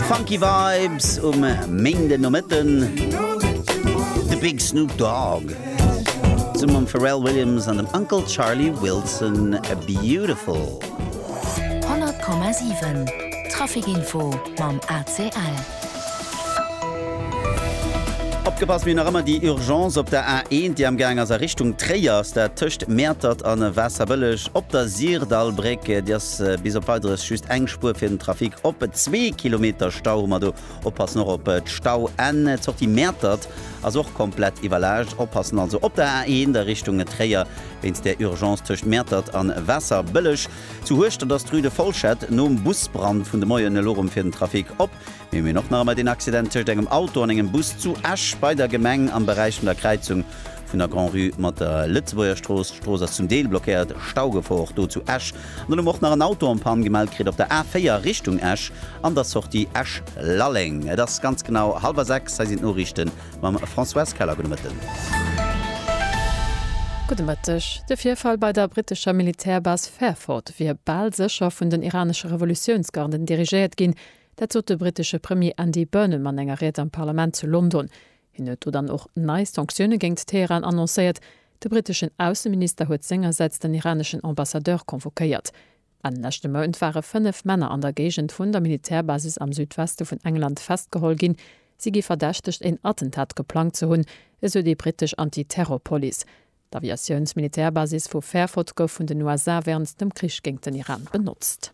Funky Vibes um Méinden Nomëtten. De Big Snoop Dogg zum mam Pharrell Williams an dem Uncle Charlie Wilson a Beautiful. 100,7 Traficinfo mam ACL. Opgepasst, mir hunn nach ëmmer déi Urgence op der A1, déi am Gaang ass a Richtung Tréier, dat tëscht Mäertert an Waasserbëlleg op der Syrdallbréck. Déi ass Bis op Weideres just eng Spuer fir den Trafic op. Zwee Kilometer Stau hu mer do. Oppassen och op d'Stauenn. D'Sortie Mäertert ass och komplett iwwerlaascht. Oppassen also op der A1 a Richtung Tréier wéinst der Urgence tëscht Mäertert a Waasserbëlleg. Zu Hueschtert ass d'Rue de Folschette nom Busbrand vun de Moien elo rëm fir den Trafic op. Mir hunn och nach emmer deen Accident tëscht engem Auto an engem Bus zu Esch bei der Gemeng am Beräich vun der Kräizung vun der Grand-Rue mat der Lëtzebuergerstrooss. D'Strooss ass zum Deel blockéiert, Staugefor och do zu Esch. An dunn hu mer och nach en Auto en Panne gemellt kritt op der A4 Richtung Esch an der Sortie Esch-Lalleng. Et ass ganz genau hallwer sechs. Hei sinn d'Noriichte mam Françoise Keller. Gudde Mëtten. Gudde Mëtteg. De Virfall bei der brittescher Militärbase Fairford wier bal sécher vun den iranesche Revolutiounsgarden dirigéiert ginn, Dat sot de brittesche Premier Andy Burnham an enger Ried am Parlament zu London. Hien huet do dann och nei Sanktioune géingt Teheran annoncéiert. De britteschen Ausseminister huet sengersäits den iraneschen Ambassadeur convoquéiert. Enn leschte Mount ware fënnef Männer an der Géigend vun der Militärbasis am Südweste vun England festgeholl ginn. Si gi verdächtegt een Attentat geplangt ze hunn, esou déi brittesch Anti-Terror-Police. D'Aviatiouns-Militärbasis vu Fairford gouf vun den USA wärend dem Krich géingt den Iran benotzt.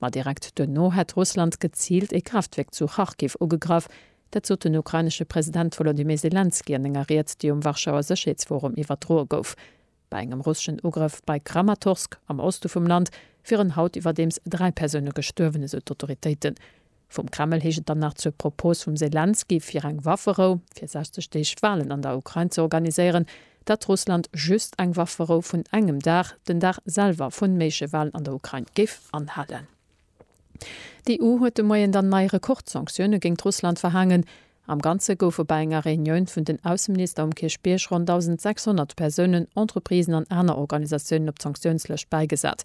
Ma direkt duerno hätt Russland geziilt ee Kraaftwierk zu Charkiw ugegraff. Dat sot den ukrainesche President Wolodymyr Selenskyj an enger Ried, déi um Warschauer Sécherheetsforum iwwerdroe gouf. Bei engem russeschen Ugrëff bei Kramatorsk am Oste vum Land wieren haut iwwerdeems dräi Persoune gestuerwen, esou d'Autoritéiten. Vum Kreml heescht et dann nach zur Propos vum Selenskyj fir eng Wafferou, fir 60 Deeg Walen an der Ukrain ze organiséieren, datt Russland just eng Wafferou vun engem Dag, den Dag selwer vun Méischewalen an der Ukrain, géif anhalen. D'EU huet de Moien dann nei Rekordsanktioune géingt Russland verhaangen. Am Ganze goufe bei enger Reunioun vun den Ausseminister um Kierchbierg ronn 1.600 Persounen, Entreprisen an aner Organisatiounen op d'Sanktiounslëscht bäigesat.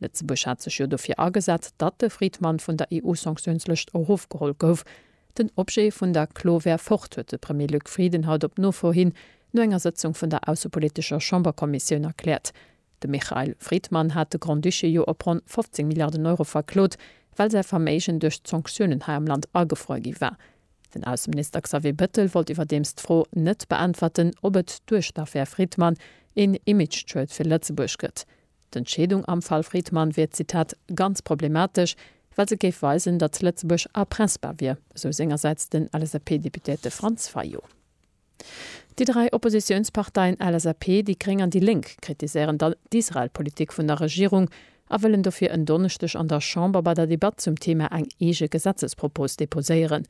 Lëtzebuerg hat sech jo dofir agesat, datt de Fridman vun der EU-Sanktiounslëscht erofgeholl gouf. Den Objet vun der Klo wär fort, huet de Premier Luc Frieden haut op Nofro hin no enger Sëtzung vun der aussepolitescher Chamberkommissioun erkläert. De Michail Fridman hat de Grand-Duché jo op ronn 15 Milliarden Euro verklot, well säi Verméigen duerch d'Sanktiounen hei am Land agefruer gi war. Den Ausseminister Xavier Bettel wollt iwwerdeems d'Fro net beäntwerten, ob et duerch d'Affär Fridman een Imageschued fir Lëtzebuerg gëtt. D'Entscheedung am Fall Fridman wier, Zitat, ganz problematesch, well se géif weisen, datt Lëtzebuerg erpressbar wier, esou sengersäits den LSAP-Deputéierte Franz Fayot. Déi dräi Oppositiounsparteien LSAP, déi gréng an déi lénk kritiséieren dann d'Israel-Politik vun der Regierung a wëllen dofir en Donneschdeg an der Chamber bei der Debatt zum Theema eng eege Gesetzespropos deposéieren.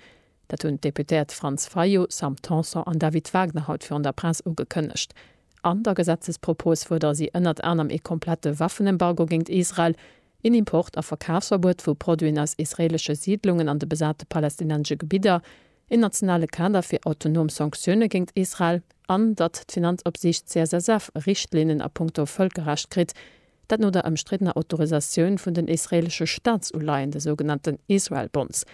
Dat hunn d'Deputéiert Franz Fayot, Sam Tanson an David Wagner haut virun der Press ugekënnegt. An der Gesetzespropos fuerder si ënnert anerem ee komplette Waffenembargo géingt Israel, een Import a Verkafsverbuet vu Produiten aus israeelesche Siidlungen an de besate palästinensesche Gebidder, een nationale Kader fir autonom Sanktioune géingt Israel an datt d'Finanzopsiicht CSSF Richtlinnen a puncto Vëlkerrecht kritt, dat no der ëmstriddener Autorisatioun vun den israeelesche Staatsuleihen, de sougenannten Israel Bonds.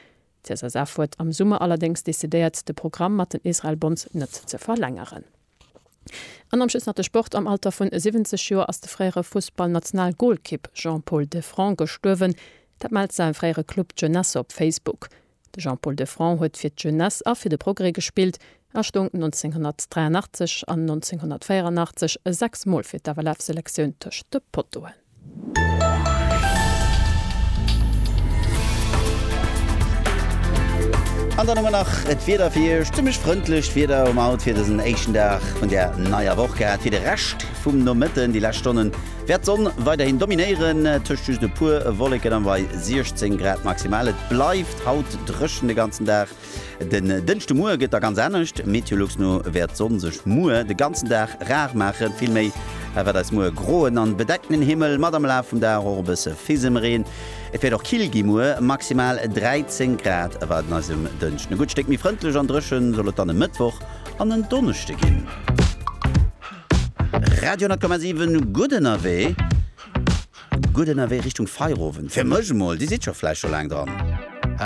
D'CSSF huet am Summer allerdéngs decidéiert, de Programm mat den Israel Bonds net ze verlängeren. An am Schluss nach de Sport, Am Alter vun 70 Joer ass de fréiere Fussballnationalgolkipp Jean-Paul Defranc gestuerwen. Dat mellt säi fréiere Club d'Jeunesse op Facebook. De Jean-Paul Defranc huet fir d'Jeunesse a fir de Progrès gespillt a stoung 1983 an 1984 e sechs Mol fir d'FLF-Selektioun tëscht de Pottoen. An dann hu mer nach d'Wieder fir Iech, zimmlech frëndlecht Wieder um Haut fir dësen éischten Dag vun der neier Woch gehat. Fir de Rescht vum Nomëtten, déi lescht Stonnen, wäert d'Sonn weiderhin dominéieren, tëscht just e puer Wolleken an bei 16 Grad maximal. Et bleift haut dréchen de ganzen Dag. Den Dënschde Muer gëtt da ganz anescht. MeteoLux no wäert d'Sonn sech muer de ganzen Dag rar maachen. Villméi erwaart eis muer e groen an bedeckten Himmel mat am Laf vum Dag och e bësse Fisemreen. Et wäert och kill gi, muer maximal 13 Grad erwaarden eis um Dënschden. E gutt Stéck méi frëndlech an dréche soll et dann e Mëttwoch an en Donneschde ginn. Radio 10,7, gutt ënnerwee. Gutt ënnerwee Richtung Feierowend. Fir mech emol. Dir sidd scho vläicht scho laang dran.